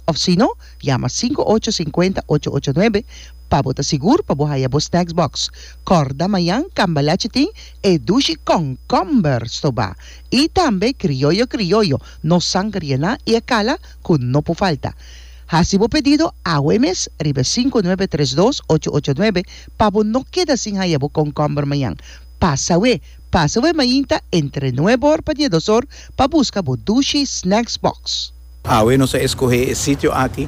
Of si no, yama sinku ocho sinkuenta ocho ocho nuebe pa bo ta sigur pa bo haya bo snacks box. Kòrda mañan Cambalache tin e dushi kònkòmber stobá i tambe krioyo krioyo no sangrianá i e kala ku no por falta. Hasi bo pedido awe mes riba e sinku nuebe tres dos ocho ocho nuebe pa bo no keda sin haya bo kònkòmber mañan. Pasa awe pasa awe mainta entre nuebe or pa dies dos or pa buska bo dushi snacks box. Awe nos a eskohé e sitio aki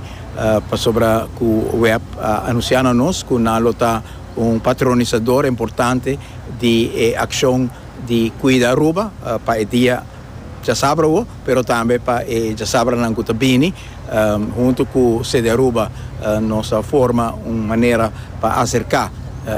pasobra ku Webb a anunsiá na nos ku nan lo ta un patronisador importante di e akshon di kuida Aruba pa e dia djasabra awo, pero tambe pa e djasabranan ku ta bini. Huntu ku CDAruba nos a forma un manera pa aserká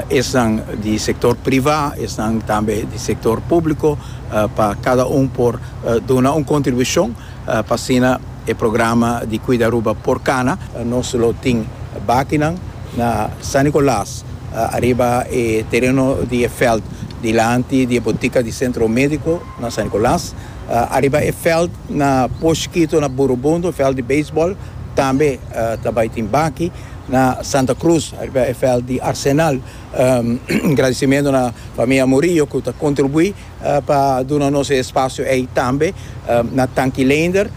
esnan di sektor privá, esnan tambe di sektor públiko pa kada un por duna un kontribushon. Pa asina e programa di Cuida Aruba por cana. Nos lo tin bakinan na San Nicolas, ariba e tereno di e veld dilanti di e botica di Centro Medico na San Nicolas, ariba e veld na Push Quito na Burubundo, veld di baseball, tambe ta bay tin baki na Santa Cruz, ariba e veld di Arsenal. Gradicimento na Famia Murillo cu ta contribui. pa duna nos e espasio ei tambe na Tanki Leender.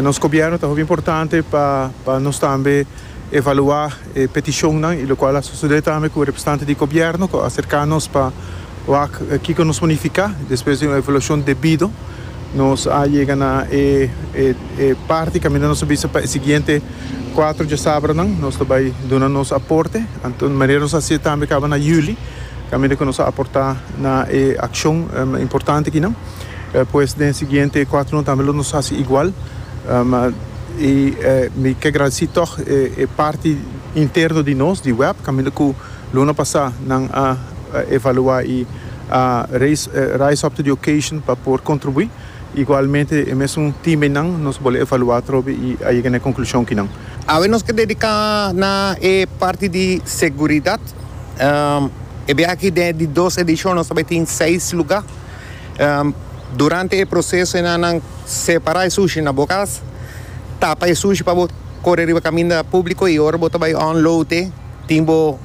Nos Gobierno ta hopi importante pa nos tambe evalua e peticionnan y locual a sucede tambe cu representante di Gobierno cu a acerca nos pa wak kico nos planifica. Despues di un evaluacion debido nos a yega na e parti caminda nos ta bisa pa e siguiente cuatro diasabranan nos ta bay duna nos aporte, anto manera nos a haci tambe caba na Juli. Kaminda ku nos a aportá na e akshon importante akinan, pues den e siguiente kuatronan tambe lo nos hasi igual. I mi ke gradesí tòg e parti interno di nos, di web, kaminda ku luna pasá nan a evaluá i a rise up to the occasion pa por kontribuí. Igualmente e mesun timenan nos bole evaluá trobe i a yega na e konklushon kinan. Awe nos ke dediká na e parti di seguridat. E biaha aki den di dos edishon nos ta bai tin seis lugá. Durante e proseso e nannan separá e sushi na bo kas, tapa e sushi pa bo kore riba kaminda públiko i ora bo ta bai unload tin bo.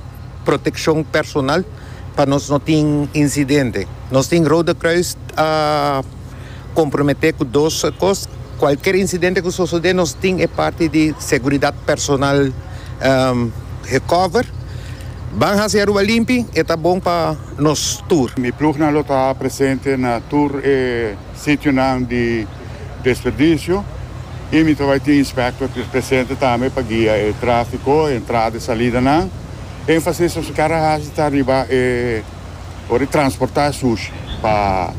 Protekshon personal pa nos no tin insidente. Nos tin Rode Kruis a komprometé ku dos kos, kualker insidente ku sosodé nos tin e parti di seguridat personal gekover. Ban hasi Aruba limpi, e ta bon pa nos tur. Mi plugnan lo ta presente na tur e sitionan di. desperdicio y mi ta bai tin inspector ki ta presente tambe pa guia e trafico, e entrada y salidanan. Enfasis nos a kere haci ta riba e ora di transporta e sushi pa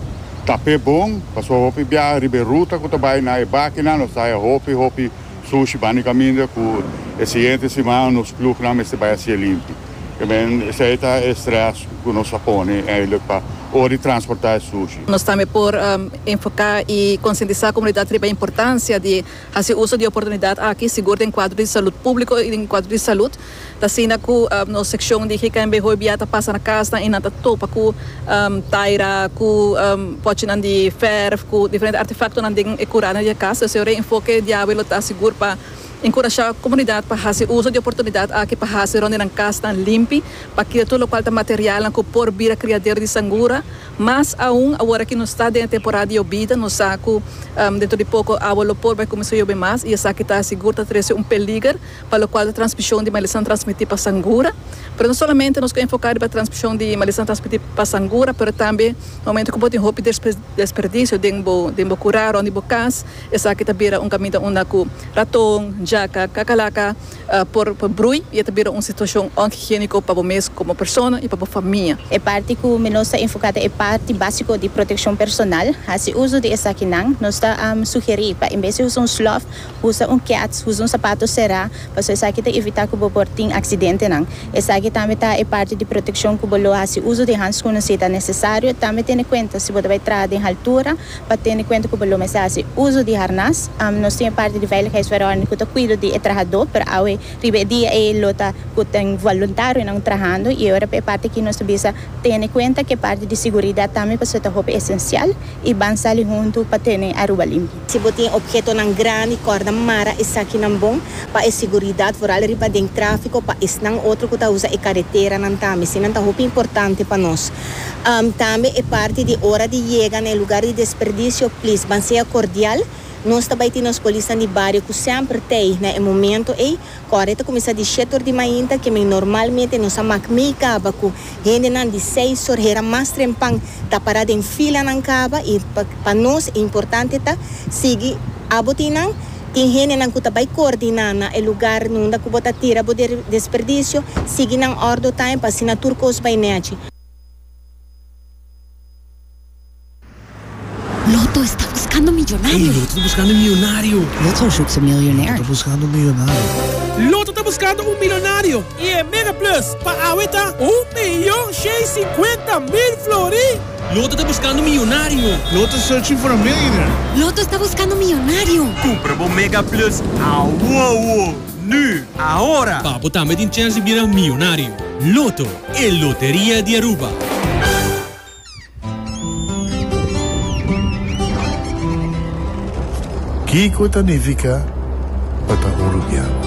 ta pe bon, pasobra hopi biaha riba e ruta cu ta bai na e bakinan nos ta haya hopi hopi sushi banda di caminda cu e siguiente siman nos ploeg nan mester bai haci e limpi. También esei ta e stress cu nos a pone eindelijk pa ora di transporta e sushi. Nos tambe por enfoca y concientisa comunidad riba e importancia di haci uso di e oportunidad aki, sigur den cuadro di salud publico y den cuadro di salud. Ta asina cu nos seccion di GKNB hoy bia ta pasa na casnan y nan ta topa cu taira, cu pochinan di verf, cu diferente artefactonan den e curana di e cas. Esei ora e enfoke diawe lo ta sigur pa. Enkurashá komunidat pa hasi uso di oportunidat aki pa hasi rònt di nan kasnan limpi pa kira tur lokual ta materialnan ku por bira kriadero di sangura, mas aun awor a ki nos ta den e temporada di yobida, nos sa ku dentro di poko awa lo por bai kuminsá yobe mas i esaki ta sigur ta trese un peliger pa lokual ta transmishon di malesa transmití pa sangura. Pero no solamente nos ku enfoká riba transmishon di malesa transmití pa sangura pero tambe na momentu ku bo tin hopi desperdisio den bo kurá rònt di bo kas, Esaki ta bira un kaminda unda ku raton, jaka, kakalaka por brui i e ta bira un situashon onhigiéniko pa bo mes komo persona i pa bo famia. E parti ku mi nos ta enfoká ta e parti básiko di protekshon personal. Hasi uso di esakinan. Nos ta sugerí pa en bes di usa un slòf, usa un kèts, usa un sapato será, pasobra esaki ta evitá ku bo por tin aksidentenan. Esaki tambe ta e parti di protekshon ku bo lo hasi uso di hanskun si ta nesesario. Tambe tene kuenta si bo ta bai traha den haltura. Pa tene kuenta ku bo lo mester hasi uso di harnas. Nos tin e parti di veiligheidsverordening ku ta kuido di e trahadó, pero awe riba e dia ei lo ta ku ta un voluntarionan trahando. I e ora pa e parti aki nos ta bisa tene kuenta ku e parti di siguridat tambe pasobra ta hopi esensial i ban sali huntu pa tene Aruba limpio. Si bo tin ophetonan grandi kòrda mara esakinan bon pa e siguridat vooral riba den tráfiko pa esnan otro ku ta usa e kareteranan tambe. Eseinan ta hopi importante pa nos. Tambe e parti di ora di yega na e lugar di desperdicio, please ban sea cordial. Nos ta bai tin nos polisnan di bario cu semper t'ey na e momento ey. Cu awor e ta cuminsa di shete tor di mainta, kimen normalmente nos a mak mey caba cu hendenan di seis tor hera mas trempan ta para den filanan caba y pa nos e importante ta sigui abo tin nan. Tin hendenan ku ta bai koordiná na e lugar nunda ku bo ta tira bo desperdisio, sigui nan òrdo taim pa asina tur kos bai nèchi. Loto esta buskando un milionario i e Mega Plus pa awe ta un miyon shei sikuenta mil florì! Loto ta buskando miyonario. Loto is searching for a millionaire. Loto esta buskando miyonario. Kumpra bo Mega Plus awowo, nu, ahora! Pa bo tambe tin chèns di bira miyonario. Loto, e loteria di Aruba. Kiko ta nifica pa ta Uruguiano?